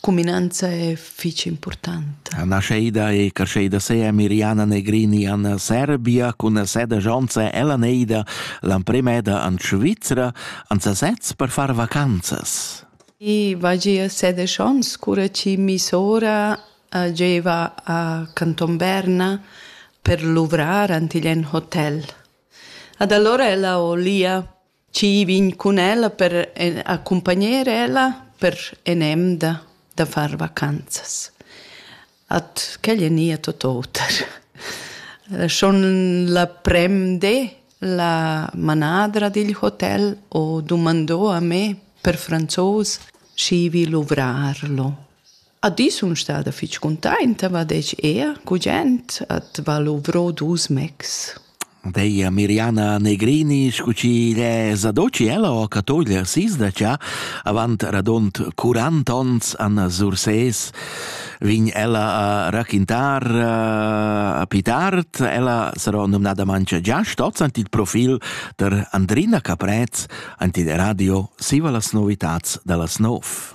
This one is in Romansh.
Cuminanza è fitg impurtanta. La nascheida e crescheida sea Miriana Negrini an Serbia cun seda jonza ella neida l'ampremeda an Svizra an sasez per far vacanzas. I vagia sede schons, cura chi mi sora uh, gieva a Canton Berna per luvrar antigl en hotel. Ad allora ella olia chi vegn cun ella per accumpagner ella per enemda da far vacanzas. At quel e nia tot oter. Schon la premde la manadra digl hotel ho dumandò a me per franzos, schi vi luvrarlo. A di sun stada fich cuntainta, va desch eir gugent, at va luvrò dus mecs. Deia Miriana Negrini, scu chi l'è zadoci ella o catoglia s'isdacia, avant radont 40 ons an Surses, vin ella a raquintar uh, a pli tard, ella sarò nomnada mancha già stoz ant il profil der Andrina Caprez, ant il radio Siva las novitats da las nov.